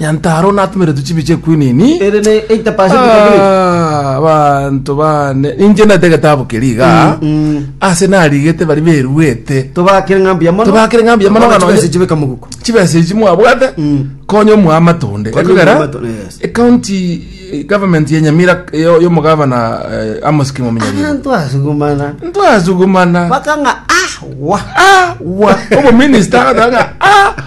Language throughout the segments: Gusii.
Nyantaro natomeretwe chibi chie kwinini. Ere ne eita pasenti kabiri. Ah, banto bane inche nate getabu keri iga ase narigete bari beruete Tobakire ng'a mbuya mono. Tobakire ng'a mbuya mono, Abana ng'a chibesa chibeka moguko. chibesa echi mwabwate Mm. konya omwa amatonde Konya ekogera omwa amatonde, yes. ecounty eh, government ya nyamira eh, yo- yomogavana eh, amos kimominyarire Abanto asugumana. ntwasugumana Bakang'a ah wa. awa omominista agatanga a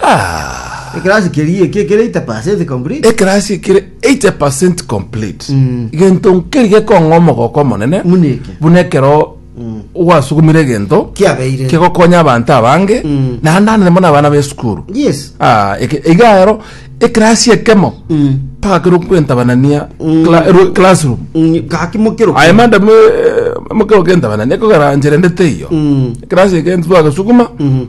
Ah, Ekerasi keria eke kere 80% complete. ekerasi ekere 80 complete Mm. gento nkeri gekong'a omogoko omonene Muna eke. buna ekero Mm. gwasugumire egento Kiabeire. kegokonya abanto abange Mm. naende anene mono abana b'esukuru Yes. Ah, eke- iga ero ekerasi ekemo Mm. mpaka kero kwentabanania Mm. cla- ero- classroom Mm, Gaki mokero. aye manda mokero kentabanania kogera ncherendete iyo Mm. ekerasi eke ntitwagesuguma Mhm.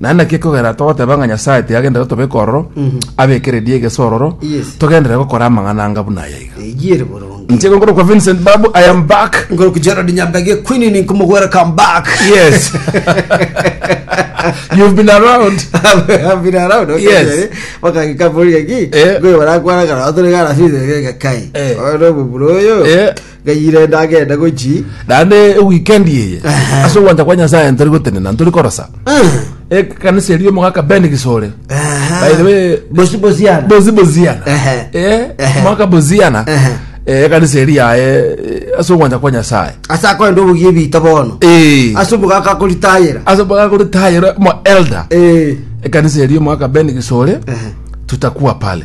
Naende naki ekogera togoteba ng'a Nyasae tiagenderete tobeke ororo, abekererie egeso ororo, Yes. togenderere gokora amang'ana anga buna aya iga. Eyere boronge. Nchego nkoro kwa Vincent Babu, I am back. Ngoro ku Gerald Nyambege Queen ni kumugwera come back. Yes. You've been around. Abira round okay. Yes. Baka kikaburi ki. Eh. Ngwe barakwana kana otore kana fize kai. Eh. Oro buburo yo. Eh. Ng'ai rende agende gochii. Naende ewikendi eye Ehe. ase ogwancha kwa nyasaye ntari gotenena ntori korosa ekanisa eria omogaka ben gisore By the way, Bosi bosiana. bozi boziana Ehe. Eh, Ehe. omogaka boziana Ehe. eh, ekanisa eria yaye eh, ase ogwancha kwa nyasaye Ase akoenda obogie bita bono. Eh, Ase omogaka akoritayera. ase omogaka oritayere mo elder Eh. ekanisa eria omogaka ben gisore Ehe. tutakuwa pale